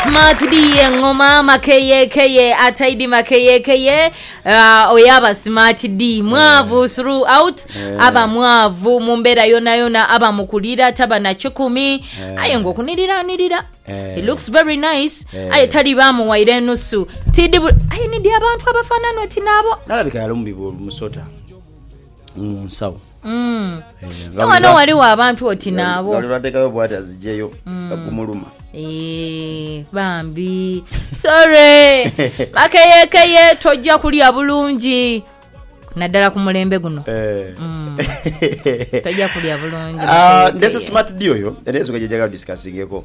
Smart D engoma makeyekeye ataidi makeyekeye uh, oyaba smart D mwavu throughout aba mwavu mu mbeera yonayona aba mukulira taba na kikumi aye nga okuniriranirira it looks very nice aye tali bamuwaire enusu tidi bu- aye nidi abantu abafanana oti nabo nalabika yali omubibi omusota mu nsawo mm. eh, nga wano waliwo abantu oti naabo nga lwebatekayo bwati azijeyo mm. agumuluma eh, bambi sore bakeyekeye tojja kulya bulungi naddala ku mulembe guno eh. mm. tojja kulya bulungi ah, ndese smart d oyo era ensonga gyejaga discussingeko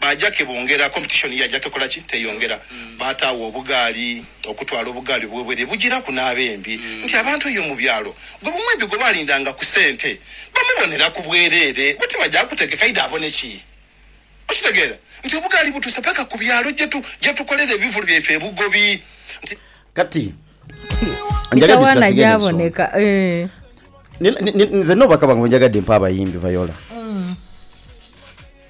Baaja ke bongera, competition yaja kekola ki? Teyongera. Baataagho obugaali, okutwala obugaali obwo bwere. Bujiraku n'abembi nti abantu eyo mu byalo gwe bumwembi gwe baalindanga ku sente bamuboneraku bwereere. Bo tibaja kutegeka aidha abone ki? Okitegeera nti obugaali butuuse paka ku byalo gye tu, gye tukolera ebivulu byaife ebugobi nti. Kati njagadde Isawana tusigasiige n'ensonga. gyaboneka. Eeh. Ni, ni, ni, nze n'obubaka bwange bwe njagadde mpa abayimbi, Viola.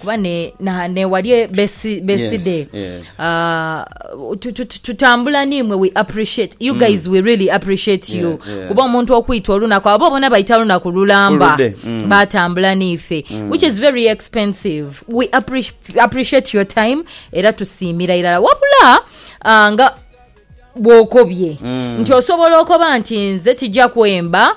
kuba newali beside tutambula nimwe we appreciate you mm. guys we really appreciate you kuba omuntu okwita olunaku abo bona baita lunaku lulamba mm. batambula nife mm. which is very expensive we appreciate your time era tusiimira irala wabula ah, nga bwokobye nti osobola okoba nti nze tija kwemba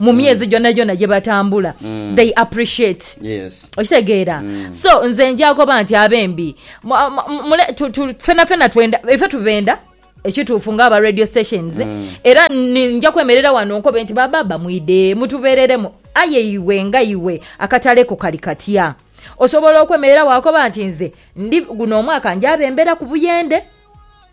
mu myezi gyona gyona gye batambula they appreciate Yes. okitegeera so nze njagoba nti abembi mu- mu- mule- tu- tu- fena fena twenda ife tubenda ekituufu nga aba radio stations era ni- nja kwemerera wano nkobe nti bababa mwide mutubereremu aye iwe nga iwe akatale ko kali katya osobola okwemerera wakoba nti nze ndi guno omwaka njabembera ku buyende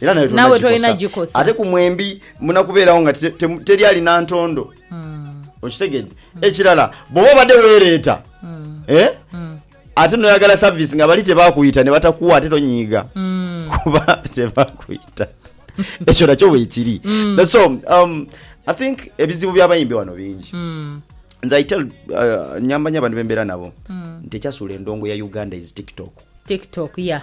era nawe Nawe tolina tolina gikosa gikosa. ate ku mwembi muna kubeerawo nga te- te- teri alina ntondo Hmm. okitegedde ekirala bwoba obadde weereeta Hmm. eh? ate noyagala service nga bali tebakuyita nebatakuwa ate tonyiiga Hmm. kuba tebakuyita ekyo nakyo bwekiri Mm. That's all. Um, i think ebizibu byabayimbi wano bingi Hmm. nze i tell uh, nyamba nyo abantu bembeera nabo Mm. nti ekyasuula endongo ya uganda is tiktok tiktok ya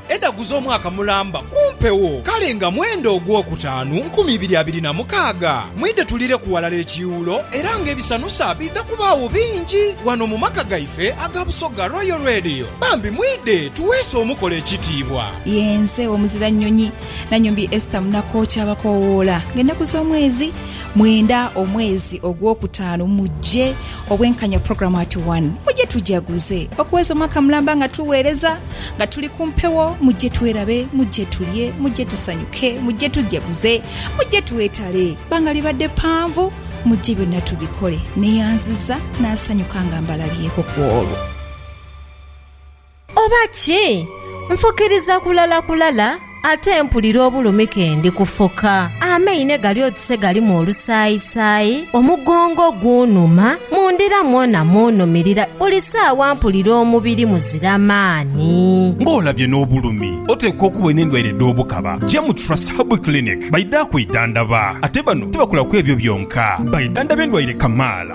Edhagu z'omwaka mulamba ku mpewo, kale nga mwenda ogwokutaanu nkumi ibiri abiri na mukaaga. Mwidhe tulireku ghalala ekiiwulo era nga ebisanusa bidha kubaagho bingi ghano mu maka gaife aga Busoga Royal Radio. Bambi mwidhe tuweese omukolo ekitiibwa. Yenze omuzira nnyonyi Nanyombi Esther Munakooki abakoowoola nga ennaku z'omwezi mwenda omwezi ogwokutaanu mujje Obwenkanya Program Ati wano muje tujaguze okuweza omwaka mulamba nga tuwereza, nga tuli ku mpewo, muje twerabe, muje tulye, muje tusanyuke, muje tujaguze, muje twetale, banga libadde panvu, muje byonna tubikole. Neyanziza nasanyuka nga mbalabyeeko kwolwo. Oba ki? Nfukiriza kulala kulala ate mpulira obulumi kendi kufuka. Amaine gali oti se galimu olusaayisaayi, omugongo gunhuma, mu ndira mwona munhumirira, buli saawa mpulira omubiri muzira maani. Nga olabye n'obulumi, oteekwa okuba olina endwaire edh'obukaba. Ja mu Trust Herbal Clinic baidha kwidhandaba. Ate bano tibakola ku ebyo byonka, baidhandhaba endwaire kamaala.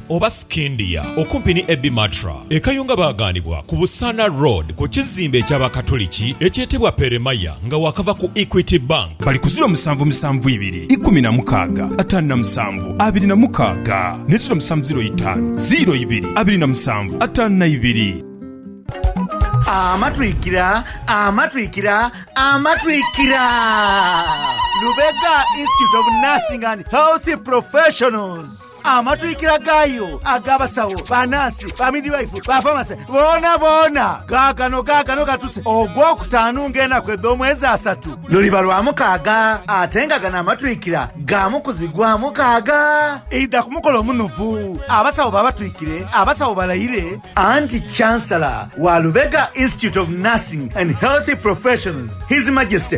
oba Scindia, okumpi ni Ebi Matra e Kayunga baagaanibwa ku Busaana Road ku kizimbe eky'Abakatoliki ekyetebwa Peremaya nga waakava ku Equity Bank. Bali ku ziro musanvu musanvu ibiri ikumi na mukaaga ataanu na musanvu abiri na mukaaga ne ziro musanvu ziro itaanu ziro ibiri abiri na musanvu ataanu na ibiri. Amatwikira, amatwikira, amatwikira! Lubega Institute of Nursing and Health Professionals. Amatwikira gaayo ag'abasawo, banansi, bamidwaifu, bafamase, boonaboona gaagano, gaagano gatuse Ogwokutaanu ng'enaku edh'omwezi asatu. Luliba lwa mukaaga, ate nga gano amatwikira ga mu kuzigwa mukaaga. Eidha ku mukolo omunuvu, abasawo babatwikire, abasawo balaire. Anti Chancellor wa Lubega Institute of Nursing and Healthy Professions, His Majesty,